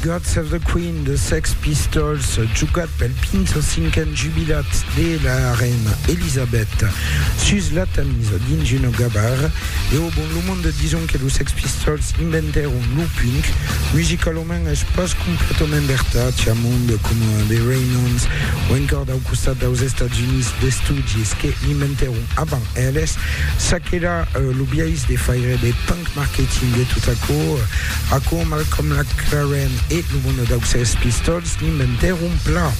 God Save the Queen de Sex Pistols, jugat pel 25n jubilat de la reina Elisabeth sus la Tamise dins un gabar. E au bon, lo monde dison que los Sex Pistols inventèron lo punk. Musicalament es pas completament vertat, i a monde coma The Ramones o encòr dau costat daus Estats Units de Stooges que l'inventèron avant eles. Çaquelà, lo biais de faire de punk Marketing e tot aquò, aquò Malcolm Laclaren e lo bono dau Sex Pistols n'inventèron plan.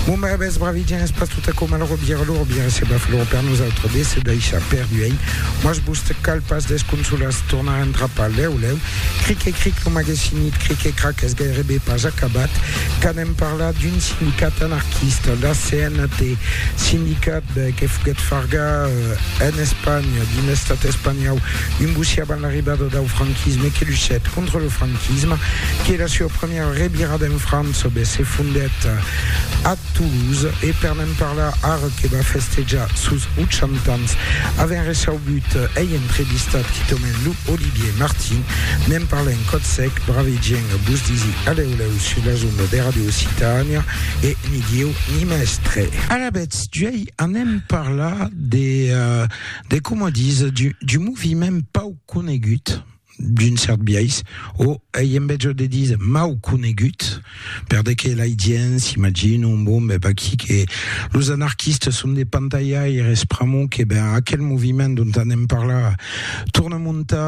Bon bravès bravidien es pas tot aquò mal robier lor bien se va flor per nosautres de se daishar per duenh mas vos te cal pas desconsolas tornar entrapar lèu lèu cric e cric lo magesinit cric e crac es gairebe pas acabat qu'anem parlar d'un sindicat anarquista la CNT sindicat que foguèt fargar en Espanha dins l'estat espanhau un bossí avant l'arribada dau franquisme que luchèt contra lo franquisme, que la sua primièra revirada en França be se fondèt a Toulouse e per ne'n parlar ara que va festejar sos 80 ans avèn receubut ei entrevistat quitament lo Olivier Martin, ne'n parlèn còth sec, bravegièn vos disi alèu lèu sus las ondas de Radio Occitània e ni Dieu ni mèstre. Alavetz, d'uèi anem parlar de de coma dis, d'un moviment pau conegut, d'un cèrt biais, o ei en betjor de dis mau conegut, per de que lai gents s'imaginon, bon, ben vaquí que los anarquistes son de pantalhaires, pr'amor que ben aquel moviment dont anem parlar torna montar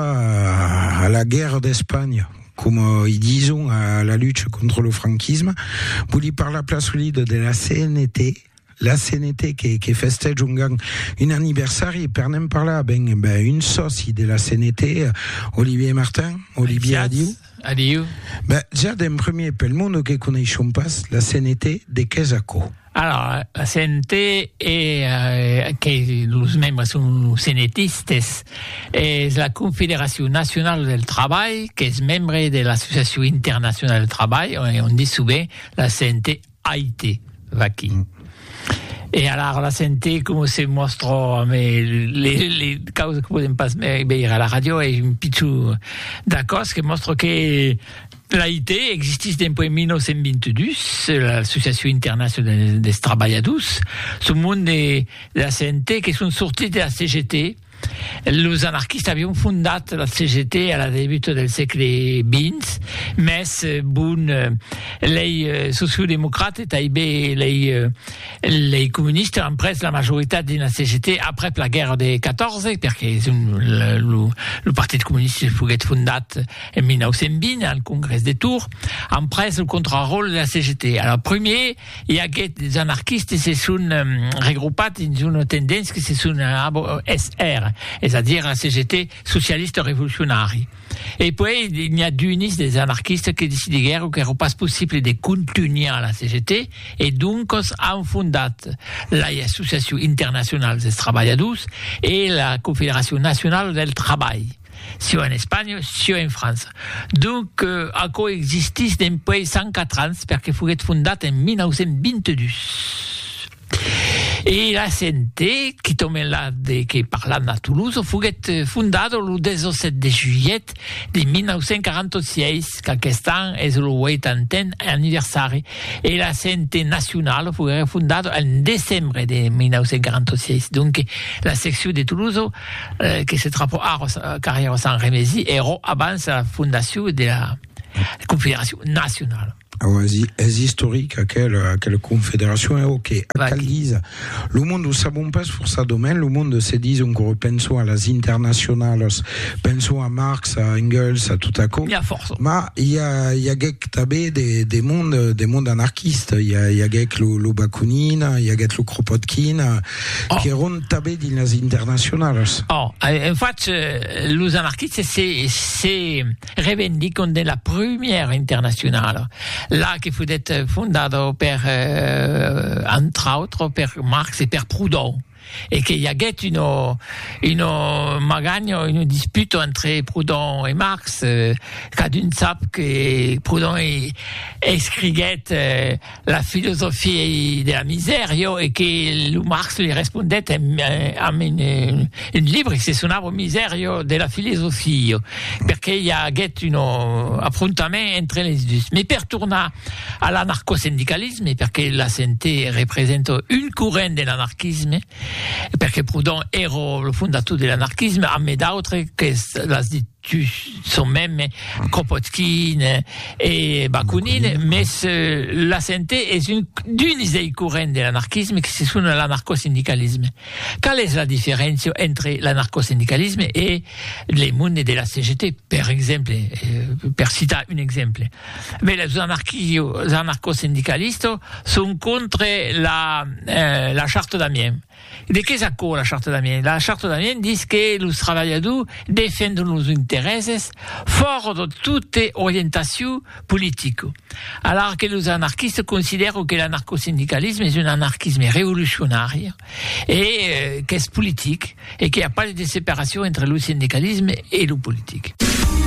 a la guèrra d'Espanha, coma i dison a la lucha contra lo franquisme, voli parlar plan solida de la CNT, La CNT que, que festège un, un aniversari, per n'en parlar, ben, ben un sòci de la CNT, Olivier Martin, Olivier, adiu. Adiu. Ben, ja d'en premier, pel monde que coneishon pas, la CNT, de qu'es aquò? Alors, la CNT est, euh, que los membres sont CNTistes, est la Confédération Nationale del Travail, qu'es membre de l'Association Internationale del Travail, on, on dit souvent la CNT Aite, vaquí. E alara la sente coma se mòstra amé le le causes que podem pas veire a la ràdio e un pichon d'acòs que mòstra que l'AIT existís dempuèi 1922, l'Associacion Internacional des Trabalhadors, son monde de la sente que son sortits de la CGT, Los anarquistas avián fondat la CGT a la debuta del sègle xx, mès bon, lei sociodemocrates e taibe lei comunistas an pres la majoritat dins la CGT aprèp la guèrra de 14, perque lo Partit Comunista foguèt fondat en 1920 al Congrès de Tours, an pres lo contraròtle de la CGT. Alara, primièr, I aguèt des anarquistes se son regropat dins una tendéncia que se son abo SR, es a dire la CGT socialista revolucionari. E puèi n'i a d'unis des anarquistes que decidiguèron qu'èra pas possible de contunhar la CGT e doncas an fondat lai Associacion Internacional dels Trabalhadors e la Confederacion Nacionala del Trabalh. sieu en Espanha, sieu en França. Donc, aquò existís dempuèi 104 ans, perque foguèt fondat en 1922. E l'ACNT, qui tombe la de que parlam a Toulouse, foguèt fondada lo 17 de julhet de 1946, qu'aquest an es lo 80n anniversari, e l'ACNT nacionala foguèt fondada en decembre de 1946. Donc, la seccion de Toulouse, que se trapò ara au carrèr au Sant Remesi, èrò abans la fondacion de la Confederacion Nacionala. Auasi, es istoric aquela, aquela Confederacion, e o que cal díser, lo monde o sabon pas forçadament, lo monde se dison que penson a las internacionalas, penson a Marx, a Engels, a tot aquò, ma i a, i aguèc tanbé de, de monde, de monde anarquista, i a, i aguèc lo, lo Bakunin, i aguèt lo Kropotkin, qu'èron tanben dins las internacionalas. Oh, en fach, los anarquistes se, se revendicon de la prumièra internacionala, la que foguèt fondada per, entre autres, per Marx e per Proudhon, e que i aguèt una, una maganha, una disputa entre Proudhon e Marx, cadun sap que Proudhon escriguèt, La filosofia de la misèria e que lo Marx li respondèt amb un libre que se sonava Miseria de la filosofia, perqué i aguèt un afrontament entre les dus. Mès per tornar a l'anarcosindicalisme, perqué la CNT representa un corrent de l'anarquisme, perqué Proudhon èra lo fondator de l'anarquisme, amé d'autres qu'es las dit. Sus son mème Kropotkin e Bakunin, mès la sente es un d'uns dei corrents de l'anarquisme que se sona l'anarcosindicalisme. Qual es la diferéncia entre l'anarcosindicalisme e le monde de la CGT, per exemple, per citar un exemple? Bèi, los anarquio-anarcosindicalistes son contre la Charte d'Amiens. De qué es aquò la Charta d'Amiens? La Charta d'Amiens dis que los trabalhadors defendon los interèses fòra de tota orientacion politica, alara que los anarquistes considèran que l'anarcosindicalisme es un anarquisme revolucionari e qu'es politic e qu'i a pas de separacion entre lo sindicalisme e lo politic.